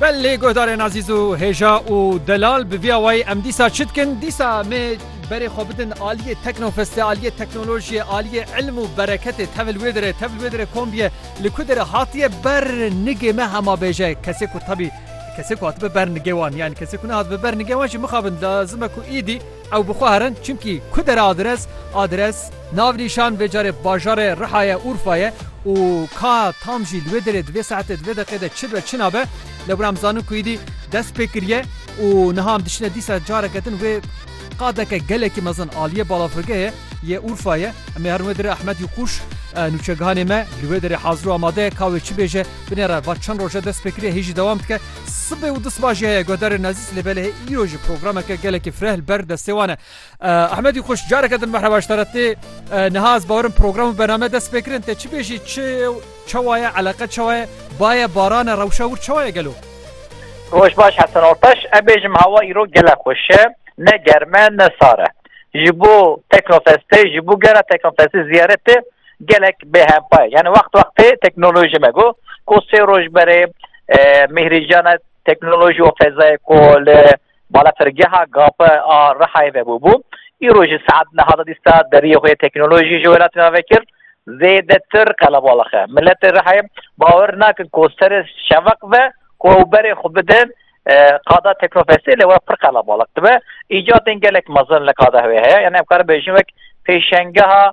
Belê guhdarên azîz û hêja û delal bi vî awayî em dîsa çi dikin? Dîsa me berê xwe bidin aliyê teknofestê, aliyê teknolojiyê, aliyê îlim û bereketê tevil wê dire, tevil wê dire kombiye li ku dire hatiye ber nigê me hema bêje kesê ku tebî kesê ku hatibe ber nigê wan yan kesê ku nehatbe ber nigê wan jî mixabin lazim e ku îdî Ew bi xwe herin çimkî ku dere adres, adres, navnîşan vê carê bajarê Riha ye, Urfa ye û ka tam jî li wê derê di vê saetê di vê deqê de çi be çi nabe lê were em zanin ku îdî dest pê kiriye û niha em diçine dîsa careke din wê qadeke gelekî mezin aliyê balafirgehê yê Urfa ye. Em ê herin wê derê Ahmed Yûkuş nûçegihanê me li wê derê hazir û amade ye ka wê çi bêje binêre va çend roj e dest pê kiriye hê jî dewam dike. Sibê û disma jî heye guhdarên nezîz lê belê îro ji programeke gelekî fireh li ber destê wan e. Ehmedî xweş careke din merheba ji te re tê. Niha ez bawerim program û bername dest pê kirin tê çi bêjî çi ye û çawa ye eleqe çawa ye baye baran e rewşa wir çawa ye gelo. Roj baş Hesen Ortaş em bêjim hewa îro gele xweş e ne germ e ne sar e. Ji bo Teknofestê ji bo gera Teknofestê ziyaretê gelek bêhempa ye. Yani wext wextê teknolojî me got ku sê roj berê Mihri Jana teknoloji û fezayê ku li balafirgeha GAP a Rihayê vebûbû, îro ji saet niha da dîsta deriyê xwe yê teknolojî ji welatê ve vekir, zêdetir qelebalix e. Miletê Rihayê bawer nakin ku serê şeveq ve ku ew berê xwe bidin qada teknofestê lê we pir qelebalix dibe. Îcadên gelek mezin li qada wê heye, yanî em karin bêjin wek pêşengeha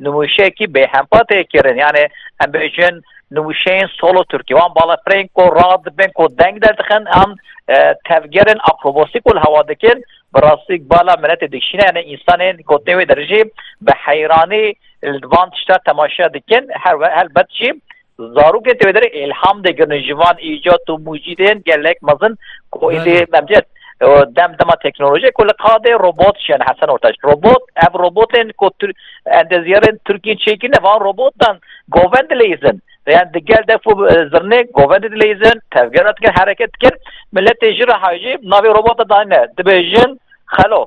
Nûmuşeyekî bêhempa tê kirin. Yanê em bêjin nûmuşeyên solo Tirkî. Wan balafirên ku rad dibin ku deng derdixin an e, tevgerên akrobosî ku li hewa dikin bi rastî bala miletê dikişîne yanê însanên gotinê wê derijî bi heyranî li van tişta temaşe dikin her helbet jî Zarokên têvederê îlham dê girnin ji van îcat û mûcîdên gelek mezin ku êdî memcet dem dema teknolojiyê ku li qadê robot şen Hesen Ortaç. Robot ev robotên ku endeziyarên Tirkiyê çêkirine van robotan govend dileyizin. Yani di gel defu zirnê govend dileyizin, tevgera dikin, hereket dikin. Milletê jira hajî navê robota dayne. Dibe jin xelo.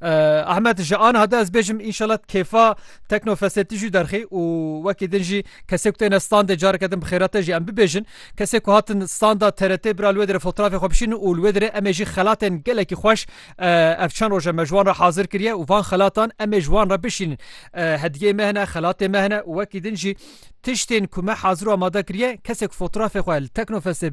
Ahmet ji aniha de ez bêjim înşala kêfa teknofestê tu jî derxî û wekî din jî kesê ku têne standê careke din bi xêra te jî em bibêjin kesê ku hatin standa TRT bira li wê dire fotrafê xwe bişînin û li wê dire em ê jî xelatên gelekî xweş ev çend roje me ji wan re hazir kiriye û van xelatan em ê ji wan re bişînin hediyeyê me hene xelatê me hene û wekî din jî tiştên ku me hazir û amade kiriye kesê ku fotrafê xwe li teknofestê